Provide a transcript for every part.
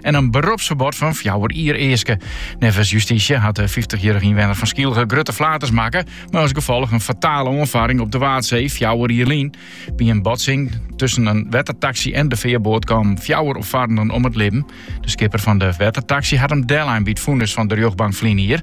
en in beropsferbod fan fjouwer jier easke. Neffens justysje hat de 50-jarige ynwenner fan Skylge grutte flaters makke, mei as gefolch in fatale oanfaring op de Waadsee fjouwer jier lyn. By in botsing tusken in wettertaksy en de fearboat kamen fjouwer opfarrenden om it libben. De skipper fan de wettertaksy hat him deellein by it fûnis fan de rjochtbank ferline jier.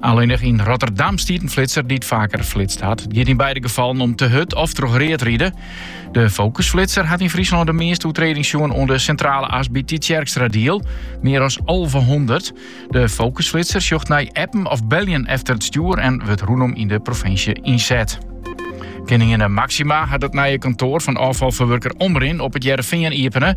Allinnich yn Rotterdam stiet in flitser dy't faker flitst hat. It giet yn beide gefallen om te hurd of troch read ride. De fokusflitser hat yn Fryslân de measte oertredings sjoen oan de Sintrale As by Tytsjerkstradiel, mear as 1100. De fokusflitser sjocht nei appen of beljen efter it stjoer en wurdt rûnom yn de provinsje ynset. Kininginne Máxima hat it nije kantoar fan ôffalferwurker Omrin op it Hearrenfean iepene.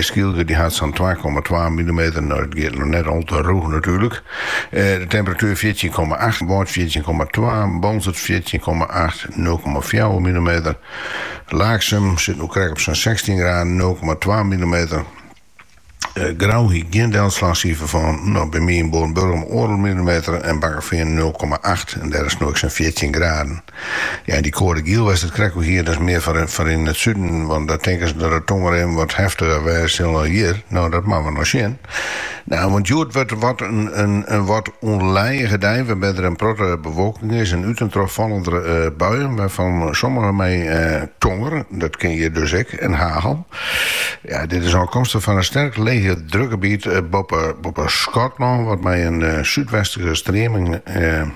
Skylge dy hat sa'n twa komma twa millimeter, no dat giet noch net al te rûch natuerlik. Eh, de temperatuer fjirtjin komma acht, Wâld fjirtjin komma twa, Boalsert fjirtjin komma acht, nul komma fjouwer millimeter. Laaksum sit no krekt op sa'n sechstjin graden, nul komma twa millimeter. Eh, Grou ha 'k gjin delslachsifer fan, by my yn Noardburgum oardel millimeter en Bakkefean nul komma acht en dêr is no ek sa'n fjirtjin graden. Ja, en dy koade giel wie der krekt al hjir, dat is mear foar yn it suden, want dêr tinke se dat de tongerbuien wat heftiger wêze sille as hjir. No, dat moatte we noch sjen. No, want hjoed wurdt it wat in wat ûnlijige dei, wêrby't der in protte bewolking is en út en troch falle der buien, wêrfan sommige mei tonger, dat kin hjir dus ek, en hagel. Ja, dit is ôfkomstich fan in sterk lege drukgebiet boppe Skotlân, wat mei in súdwestlike streaming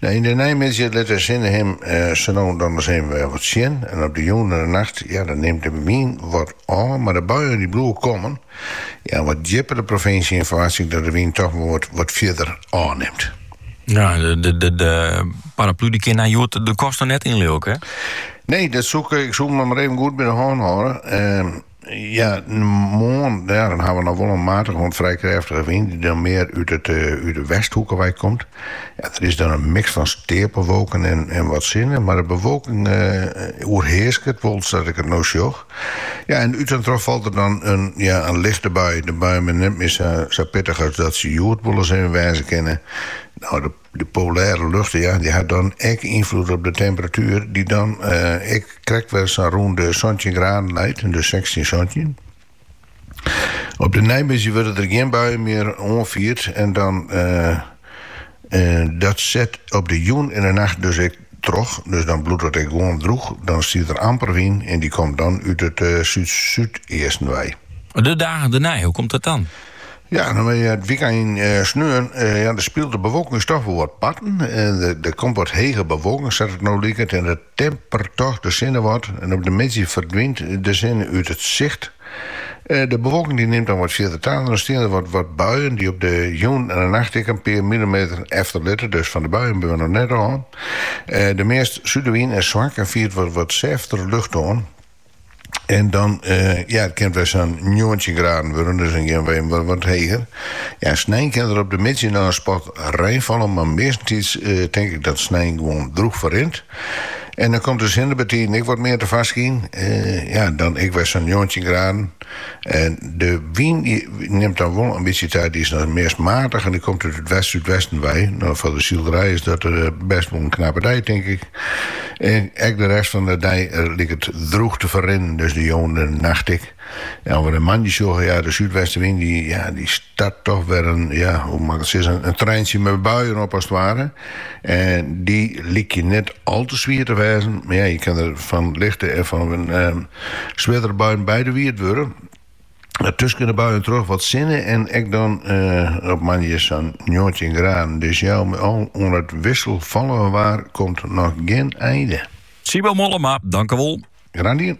Yn de neimiddei lit de sinne him sa no en dan ris even wer wat sjen en op de jûn en de nacht, ja, dan nimt de wyn wat ôf, mar de buien dy bliuwe kommen. Ja, wat djipper de provinsje yn ferwachtsje ik dat de wyn toch wol wat fierder ôfnimt. Ja, de, de, paraplu dy kin hjoed de kast net yn, leau 'k. Nee, dat soe ik, ik soe him mar even goed by de hân hâlde. Ehm, Ja, moarn dan hawwe we noch wol in matige oant frij krêftige wyn, die dan mear út it eh, út de westhoeke wei komt. Ja, der is dan in mix fan steapelwolken en, en wat sinne, mar de bewolking eh, oerheasket wol sa't ik it no sjoch. Ja, en út en troch falt der dan in, ja, in lichte bui. De buien binne net mear sa, sa pittich as dat se hjoed wol ris even wêze kinne. No, de De polêre lucht ja, dy hat dan ek ynfloed op de temperatuer, dy't dan ek eh, krekt wer sa'n rûn de 17 graden leit, de 16, 17. Op de neimiddei wurde der gjin buien mear oanfierd en dan eh, eh, dat set op de jûn en de nacht dus ik troch, dus dan bliuwt it ek gewoan droech, dan stiet der amper wyn en dy komt dan út it súd-súdeasten wei. De dagen dernei, hoe komt dat dan? Ja, dan ha we it wykein sneon. Ja, dan spilet de bewolking dus toch wol wat parten. Der komt wat hege bewolking, sa't it no liket, en dat temperet toch de sinne wat en op de middei ferdwynt de sinne út it sicht. De bewolking die nimt dan wat fierder ta en dan stean der wat wat buien die op de jûn en de nacht ek in pear millimeter efter litte, dus fan de buien binne we noch net ôf. De meast suderwyn is swak en fiert wat wat sêftere loft oan en dan ja it kin wer sa'n njoggentjin graden wurde, dus dan gean we even wat wat heger. Ja snein kin der op de middei noch in spot rein falle, mar meastentiids tink ik dat snein gewoan droech ferrint. En dan komt de sinne bytiden ek wat mear tefoarskyn. Eh, ja, dan ek wer sa'n njoggentjin graden. En de wyn die nimt dan wol in bytsje ta, die is dan meast matig en die komt út it west-súdwesten wei. Nou, foar de sylderij is dat eh, best wol in knappe dei, tink ik. En ek de rest fan de dei eh, liket droech te ferrinnen, dus de jûn en de nacht ek. As we de moandei sjogge, ja, de súdwestenwyn dy, ja, dy start toch wer in, ja, hoe mei ik it sizzen, in treintsje mei buien op as it ware. En dy lykje net al te swier te wêzen, mar ja, je kin der fan lichte en fan ehm, swierdere buien betsjinne wurde. Tusken de buien troch wat sinne en ek dan eh, op moandei sa'n njoggentjin graden. Dus ja, al mei al oan it wisselfallige waar komt noch gjin einde. Sybo Mollema, dankewol. Graach dien.